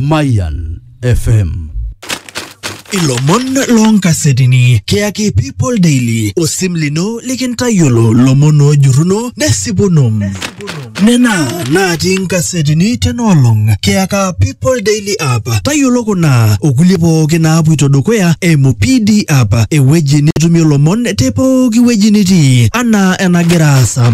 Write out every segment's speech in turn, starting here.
Mayan FM. ilomon loonkasetini kiyaki people daily osim lino likintayiolo lomon oojurruno nesipuno nena natii inkasetini tenaolong kiyaka people daily app tayiolo kuna okulie pooki naapuito dukuya eimu pd app ewueji nitumie lomon te pooki wueji nitii anaa enagira aasa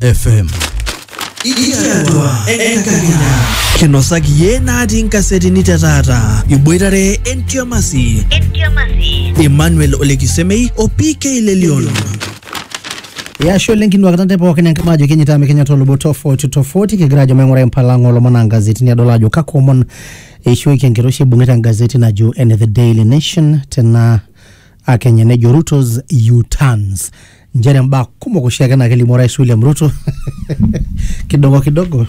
FM. Ikiatua enkakenya. Kinosaki iyie natii nkasetini te taata. Iboitare entiamasi. Emmanuel Olekisemei o PK Lelion. Yasho lenki nwa katante pookin enkama ajo kenyita amu kenyita olobo tofauti tofauti kigira ajo maing'ura empalang'a olomon aa ngazetini adol ajo kakwa omon eishooki enkiroshi ibung'ita engazeti najo ene The Daily Nation tena akenya nejo rutos uturns nchere mbaa kumok oshiake naa kelimu orais william ruto kidogo kidogo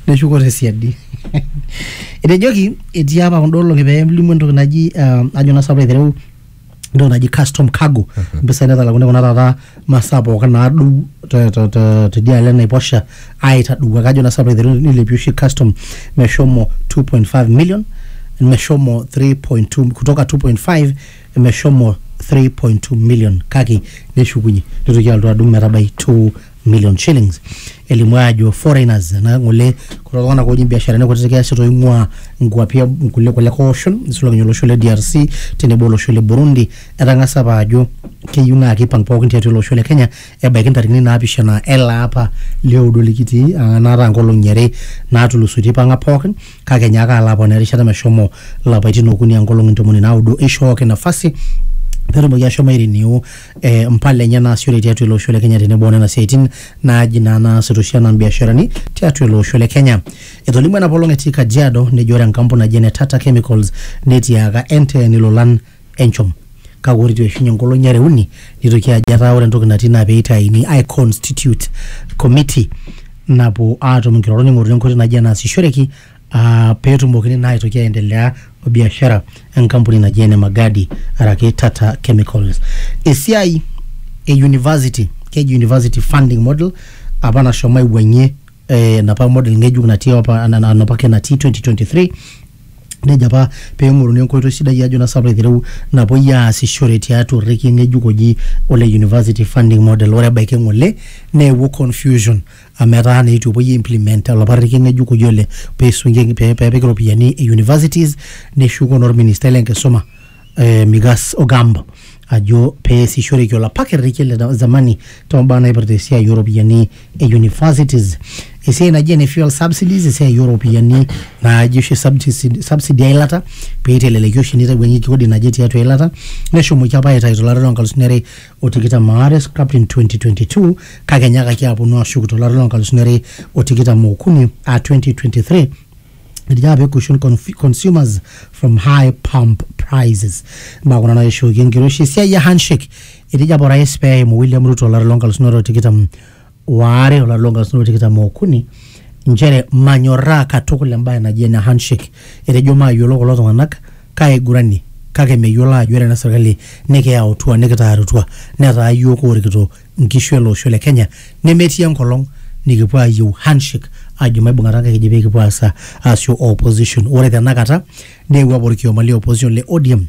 neshuko tesiadi etejoki etii apa kunda olong'i pee elimu entoki naji um, ajo naa sapu aitereu entoki naji custom cargo mpisai natalakuni kuna taata masaa pookin naadou te- te- te- tidialo enaiposha aitadou ake ajo naa sapu aiteru nilepie oshi custom meshomo 2.5 million meshomo 3.2 kutoka 2.5 meshomo 3.2 million kake neshukunye nitoki alotu adung metabai 2 million shillings elimu ajo foreigners ena ngole kulo tung'anak ooji biasharani kutitik easita oing'ua nkuapi e- nkulie kulie oshon nisulaki ninye olosho le DRC tenebo olosho le Burundi etang'asa apa ajo keyieu naa kipang pookin tiatua ele osho le Kenya ebaiki ntarikini naapishana ele apa lioudo likitii aa naata nkolong'i are natulusoitie ipang'a pookin kake enyaaka alo aponaa erishata meshomo lapaitin okuni a nkolong'i ntomoni naudo eishooki nafasi petumoki ashomo airenew eh, mpala enye naasishore tiatua ele osho le Kenya tenebo onena siaitin naaji naa naasita oshi anaa mbiasharani tiatua ele osho le Kenya. Etolimuo enapolong etii Kajiado nejo ore enkampuni naji ene Tata Chemicals netiaaka NTN ilolan enchom kake ore eitu eishunye nkolong'i are uni neitoki ajo etaa ore entoki natii naa peitaini ai constitute committee napuo aatum nkirorot ning'oruni enkoitoi naji enaasishoreki aa peetumokini naa aitoki aendelea o biashara enkampuni naji ene Magadi araki Tata Chemicals. Esiai e university keji university funding model apa nashomo aiwuang'ie eh, enapa model ng'ejuk natii apa ana- ana- enapake natii 2023 nejo apa peng'oruni enkoitoi sidai ajo nasa aitereu napuoi aasishore tiatua orrekie ng'ejuk oji ole university funding model ore ebaiki ng'ole neewuo confusion amu etaa naa itu epuoi implement olapa rrekie ng'ejuk oji ole peisung'ieki pe- pepiki iropiyiani e universities neshuko naa orministai lenkisuma eh, Migas Ogambo ajo peesishoreki olapa kerrekie le zamani tombaa naipirta esiai ooropiyiani e universities esiai naji ene fuel subsidies esiai ooropiyiani naaji oshi subsidi subsidy eilata peiteleleki oshi nitawuanyieki kodi naje tiatua eilata neshomoki apa aitayu tolari lonkalusuni are o tikitam aare scrapped in 2022 kake enyaakaki aponu ashuk tolari lonkalusuni are o tikitam okuni aa 2023 irjape cushion conf- consumers from high pump prices mbaa kuna naishooki enkiroshi esiai e handshake etejo apa orais pee eimu william ruto olari loo nkalusuni are o tikitam waare olari loo nkalusuni are o tikitam okuni nchere manyorraa katukul embae naji ene handshake etejo maayiolo kulo tung'anak kaaigurani kake meyiolo aajo ore ena serkali nikiyautua nikitaarutua netaa yiok oorikito nkishu ele osho le Kenya nemetii enkolong nikipuo ayieu handshake ajo maibung'ata nkaik eji pekipuo aasa aasio opposition ore tenakata neewuo apa orkioma le opposition le ODM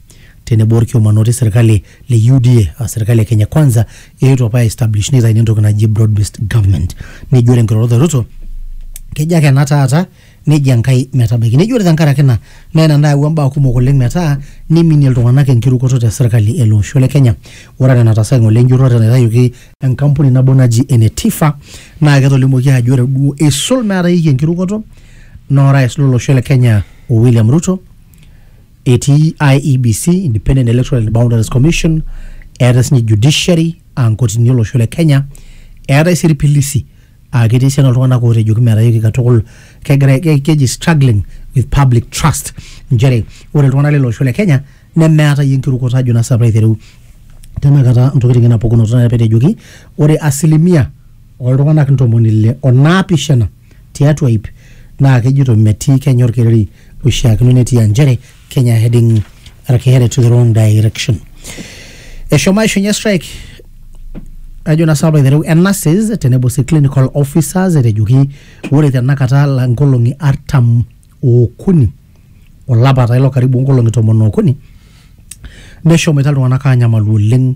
tenebo orkioma naa otii serkali le UDA aa serkali e Kenya kwanza eetuo apa aiestablish nitaini entoki naji broad based government neji ore nkirorot e Ruto kejo ake ena taata neji Enkai metabaiki. Neji ore tenkaraki ina naa ina nayawua mbaa kumok oleng metaa niminie iltung'anak enkirukoto te serkali ele osho le Kenya. Ore enaa enataasa ng'ole enjurrore naitayioki enkampuni nabo naji ene Tifa naa ketolimuoki ajo ore duo eisul meetayieki enkirukoto naa orais lo losho le Kenya o William Ruto etii IEBC, Independent Electoral and Boundaries Commission, eetae sinye judiciary aa nkotini olosho le Kenya, eetae sii irpilisi aa ketii esiana oltung'anak ootejoki metayooki katukul kegira ke- keji struggling with public trust nchere ore iltung'anak lele osho le kenya nemeatayie enkirukoto ajo naa sapaa aitereu tenakata ntokitin ena pukunoto naa petejoki ore asilimia oltung'anak ntomoni ile onaapishana tiatua ip naa kejito metii kenya orkereri oishiakino netii aa nchere Kenya heading araki headed to the wrong direction. Eshomo aishunye strike ajo na sababu aiteru enases tenebo si clinical officers etejoki ore tenakata la nkolong'i artam okuni olapa taa ilo karibu nkolong'i tomon okuni neshomoita iltung'anak anyamalu oleng'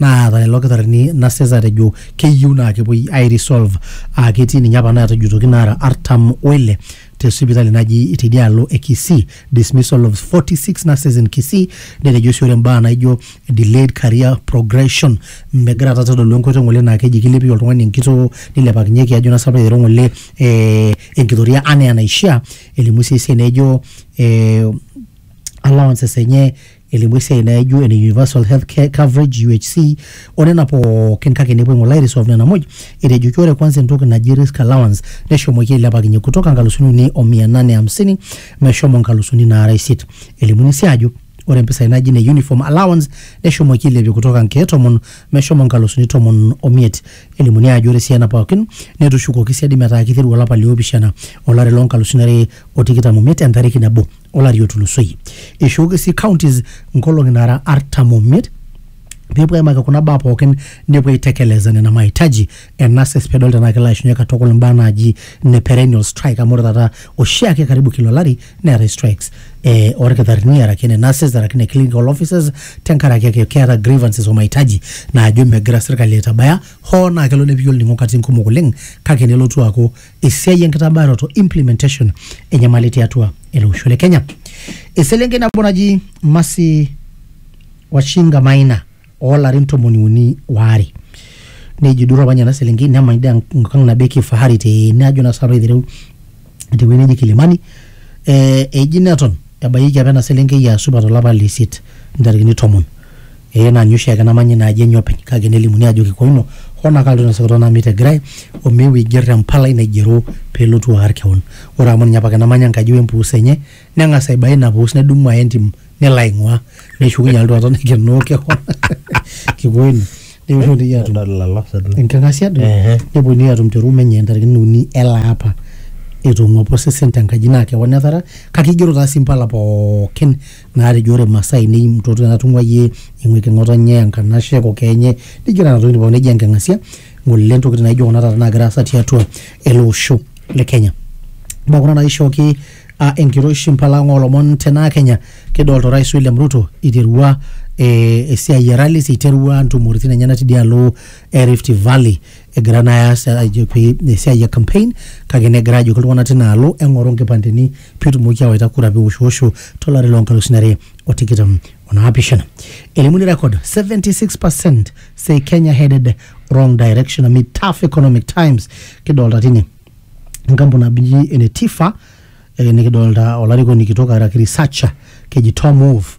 naata lelo kitarrini nases atejo keyieu naa kepuoi ai resolve aa ketii ninye apa naatajutoki naara artam oile te sipitali naji tidialo e Kisii dismissal of 46 nurses in Kisii netejo sii ore mbaa naijo delayed career progression megira taata aitodolu enkoitoi ng'ole naa keji kilepie oltung'ani enkitoo nilepakinyeki ajo naa sinanu pee aiteru ng'ole eh, enkitoria anaa enaishia elimu sii esiai naijo eh, allowances enye elimu esiai naaijo ene universal health care coverage UHC o nena pookin kake nepuo ng'ole airisolve nena muj etejoki ore kwanza entoki naji risk allowance neshomoki ailepakinye kutoka nkalusuni uni o mia nane hamsini meshomo nkalusuni naara isiet elimuni sii ajo ore mpisai naji ine uniform allowance neshomoki ailepie kutoka nkeek tomon meshomo nkalusuni tomon omiet elimuni ajo ore sii ena pookin netushukoki siadi metaa kiteru olapa liopishana olari loonkalusuni are o tikitam omiet entariki nabo olari otulusoyie. Eishooki sii counties nkolong'i naara artam omiet peepuo aimaki kuna baa pookin nepuo aitekeleza nena mahitaji e nurses pedol tenaa kelo aishunye katukul imbaa naaji ne perennial strike amu ore taata oshiake karibu kila olari neetae strikes eh, orkitarrini araki ne nurses araki ne clinical officers tenkaraki ake keeta grievances o mahitaji naajo megira sirkali aitabaya hoo naa kelo nepiki olning'o katitin kumok oleng kake nelotu aaku esiai enkitabaroto implementation enyamali tiatua ele osho le Kenya. Eselenkei nabo naji Mercy Wachinga Maina oolarin tomoni uni waare neji duo apa ninye ena selenkei nemany dee enkang nabo e kifahari tene ajo naa sinanu aitereu tewueji neji Kilimani eh, eji neton ebayieki apa ena selenkei aa supat olapa le isiet intarikini tomon Ee naa ninye oshiake namanya ina aji enye openy kake nelimuni aajo kikua ino, hoo naa kaloito ina sokoto nami te Girai o meu aiger empalai naigero pee elotu aar keon. Ore amu ninye apake namanya enkaji we mpuus enye neng'as aibae ina puus nedumu aya entim nelo aing'uaa neshukunye alotu aton aikenoo keon kikua ino. Nepuonunui aatum Adol lelo sesen. enking'asia duo Ehe. nepuonunui aatum te room enye ntarikini uni ele apa etong'uapa osesen te nkaji naa keon etara kake igero taa sii impala pookin naatejo ore masaa ainei mtoto natung'ua iyie ing'uiki ng'otonye enkanashe kokoo enye nijo nena tokitin pookin neji enking'asia ng'ole intokitin naijo kuna taata naagira aasa tiatua ele osho le Kenya mbaa kuna naishooki uh, enkiroshi mpala ang olomon tenaa Kenya kidolta orais William Ruto iterua eh, esiai e rallies iterua ntumoritin enyenak tidialo e Rift Valley egira naa aas ajo pee esiai e campaign kake negira ajoki iltung'anak tina alo eng'oru nkipandeni pitumoki awaita kura piwoshwosho tolari loo nkalusuni are o tikitam o naapishana elimuni record 76% say Kenya headed wrong direction amid tough economic times kidolta tine enkampuni naji ene Tifa eh, nikidolta olarikoni kitok araki researcher keji Tom Wolf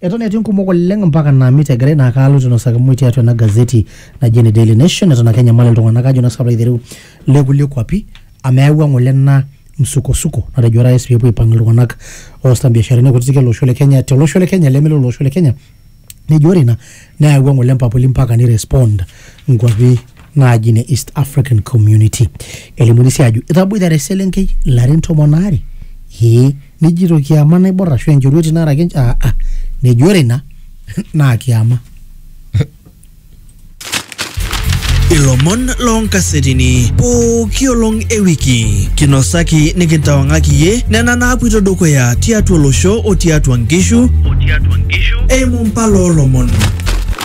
Eton etii nkumok oleng mpaka naamit egirai naa kaalo tinosaki mui tiatua ena gazeti naji ene Daily Nation eton ake enyamali iltung'anak ajo nang'as aiteru le kulie kuapi amu eyawua ng'ole ena msukosuko natejo orais peepuo aipang iltung'anak oosita mbiasharani kutitik ele osho le Kenya tele osho le Kenya leme lele osho le Kenya nejo ore ina neyawua ng'ole mpapuli mpaka ni respond nkuapi naaji ne East African Community. Elimuni sii ajo etaboitare eselenkei ilarin tomon aare ee nijito kiama naibor ashu enchorueti naaraki ench- ah, ah. neji ore ina naa kiama ilomon loonkasetini pooki olong e wiki kinosaki nikintawang'aki iyie nena naapuito dukuya tiatua olosho o tiatua nkishu eimu mpala oolomon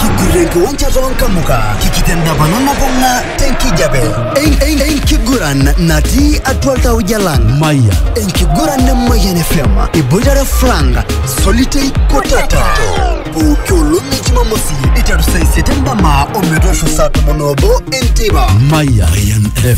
Kigurankiwanja toonkamuka kikitendapana nakong'a tenkijape enkiguran natii atua iltauja lang maya enkiguran e Mayian FM iboitare Frank Solitei Kotata pooki olong e Jumamosi iteru saa isiet endama ometoosho saa tomon oobo enteipa maya